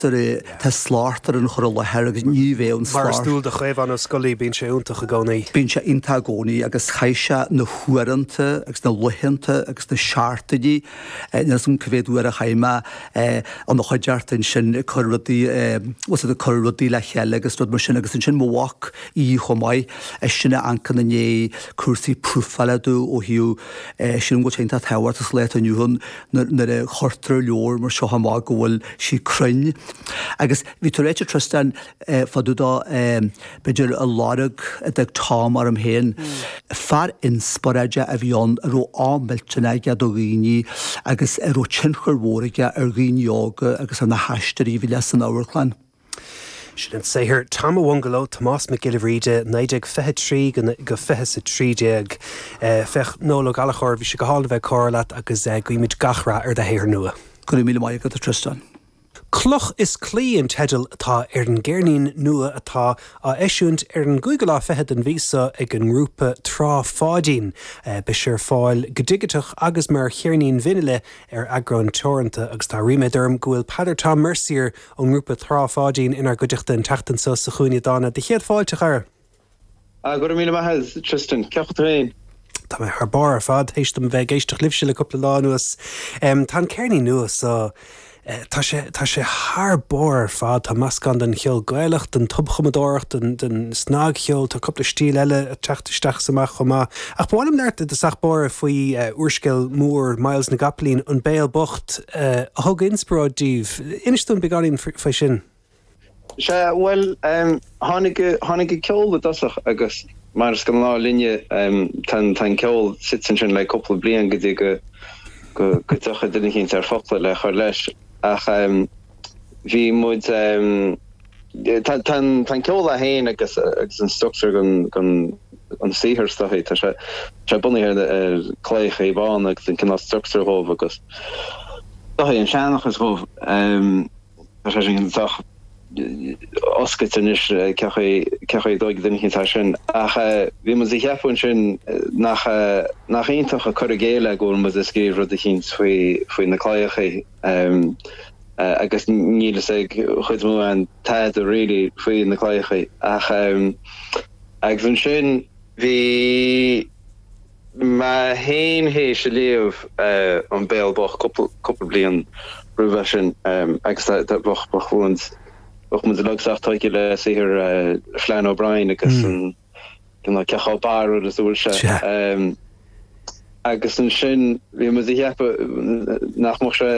Tá slacht ar an chur i láthair agus ní bheidh an slacht. Mar is dual do Chaomhán Ó Scolaí, bíonn sé iontach i gcónaí. Bíonn sé iontach i gcónaí agus chaith sé na huaireanta agus na laethanta agus na seachtainí, níl 'fhios a'm cé mhéad uair a chaith mé ina chuideachta ansin ag cur rudaí, bhuel ag cur rudaí le chéile agus rud mar sin agus ansin mo mhac, í, chomh maith, eisean a amharcann i ndiaidh cúrsaí profála domh ó thaobh, sin an rud is iontach tábhachtach sa lá atá inniu ann. nuair a chuirtear leabhar mar seo amach go bhfuil sí cruinn. Agus bhí tú ag ráit Tristan fá dtaobh de b'fhéidir an lorg a d'fhág Tom orm féin. Fear inspioráide a bhí ann a raibh ádh millteanach aige do dhaoine agus a raibh tionchar mhór aige ar dhaoine óga agus ar na haisteoirí a bhí leis san amharclann. Sin an saothar Tom an Bhungalow, Tomás Mac Giolla Bhríde, 1923 go 2013. Noel Ó Gallchóir, bhí sé go hálainn a bheith ag comhrá leat agus guímid gach rath ar do shaothar nua. Go raibh míle maith agat, a Tristan. Cloch is Claí an teideal atá ar an gceirnín nua atá á eisiúint ar an gcúigiú lá fichead den mhí seo ag an ngrúpa Trá Pháidín. Beidh sé ar fáil go digiteach agus mar cheirnín vinile ar eagrán teoranta agus tá ríméad orm go bhfuil Peadar Tom Mercier ón ngrúpa Trá Pháidín inár gcuideachta an tseachtain seo sa Chúinne Dána, do chéad fáilte, a chara! Go raibh míle maith, a Tristan. Cén chaoi a bhfuil tú féin? Tá mé thar barr ar fad, théis dom bheith ag éisteacht libhse le cúpla lá anuas. Tá an ceirnín nua so, tá sé, tá sé thar barr ar fad. Tá meascán den cheol Gaelach, den tobchumadóireacht, den, den snagcheol, tá cúpla stíl eile ag teacht isteach is amach chomh maith. Ach ba mhaith liom labhairt i dtosach báire faoi úrscéal mór Myles na gCapaillín, An Béal Bocht, a thug inspioráid daoibh. Inis dúinn beagáinín faoi sin. Sea, bhuel, tháinig an ceol i dtosach agus mar is gnáth linne, tá an ceol suite ansin le cúpla bliain go dtí go dtiocfaidh duine eicínt ar fhocla le cur leis ach bhí muid, Tá an ceol é féin agus an struchtúr den saothar is dóichí, tá sé bunaithe ar chlaíocha Uíbh Ráthaigh agus an cineál struchtúr dhóibh agus is dóichí, an seanchas dhóibh. Tá sé sin sách oscailte anois, cioch í dóigh d'imthigh atá sin. Ach bhí muid ag ceapadh ansin nach iontach an cur i gcéill é go bhfuil muid ag scríobh rud eicínt faoi na claíocha. agus níl fhios againn mórán tada really faoi na claíochaí ach agus ansin bhí mé fhéin théis a bheith ag léamh An Béal Bocht cúpla cúpla bliain roimhe sin agus bhíodh muid uilig sách tógtha le saothar Flann O'Brien agus an Don't know cé chomh barrúil is a bhfuil sé. Sea. Ehm, agus ansin bhí muid ag ceapadh nach mbeadh sé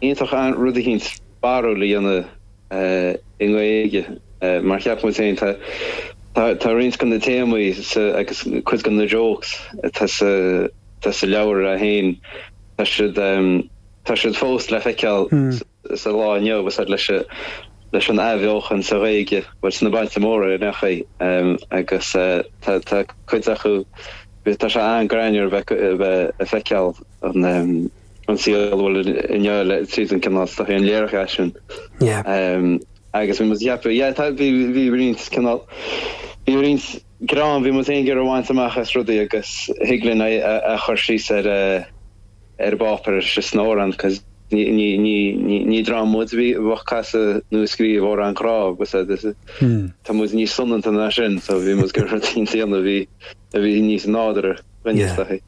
iontach rud eicínt barrúil a dhéanamh eh, i nGaeilge eh, mar cheap muid féin tá tá tá roinnt de na téamaí sa agus cuid de na jokes atá sa atá sa leabhar eh, féin tá siad ehm, tá siad fós le feiceáil sa sa lá inniu agus leis an athbheochan sa Ghaeilge, bhuel sna bailte móra ar aon chaoi agus tá cuid acu, tá sé an-greannmhar a bheith ag feiceáil an saol bhuel inniu tríd an cineál, is dóichí an léiriú sin. Agus bhí muid ag ceapadh, yeah, tá, bhí roinnt cineál, bhí roinnt greann, bhí muid in ann gáire a bhaint amach as rudaí agus thig linn é a chur síos ar. ar an bpáipéar nó síos san amhrán, cos ní dream muid a bhí ag casadh nó ag scríobh amhráin ghrá agus é, this is, tá muid níos soineanta ná sin, so bhí muid ag iarraidh rud eicínt a dhéanamh a bhí, a bhí níos nádúrtha dhúinn is dóichí.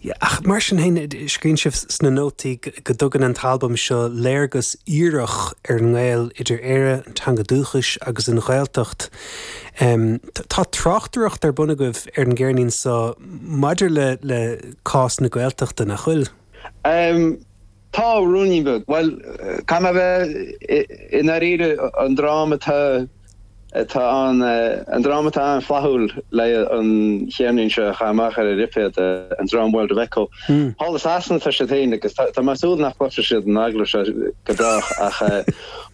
Yeah, ach mar sin féin, scríonn sibh sna nótaí go dtugann an t-albam seo léargas aorach ar an ngaol idir Éire, an teanga dúchais agus an Ghaeltacht. Tá tráchtaireacht ar bun agaibh ar an gceirnín seo maidir le, le, Cás na Gaeltachta, nach bhfuil? Em, tá, ruainne beag. Bhuel, caithfidh mé a bheith i ndáiríre, an dream atá, atá ann, an dream atá an-fhlaithiúil le an cheirnín seo a chur amach ar a lipéad, an dream World of Echo. Thall i Sasana tá siad féin agus tá, tá mé ag súil nach gcloisfidh siad an t-agallamh seo go brách ach eh,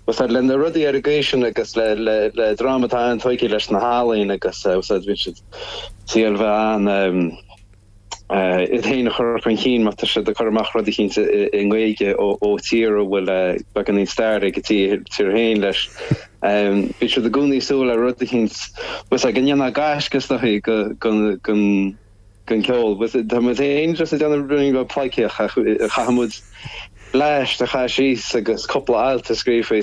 úsáid le na rudaí ar an gcaoi sin agus le, le, le dream atá an-tógtha leis na healaíona agus eh, úsáid bíonn siad ag súil a bheith in ann, em, iad féin a chur chun cinn má tá siad ag cur amach rud eicínt i nGaeilge ó tír a bhfuil beagáinín stair ag a dtír féin leis. Bíonn siad i gcónaí ag súil le rud eicínt más ea go ndéanfadh gaisce is dóichí den cheol. Tá muid féin just ag déanamh rud go pleidhcíoch ach caithfimid leath de chaith síos agus cúpla alt a scríobh faoi.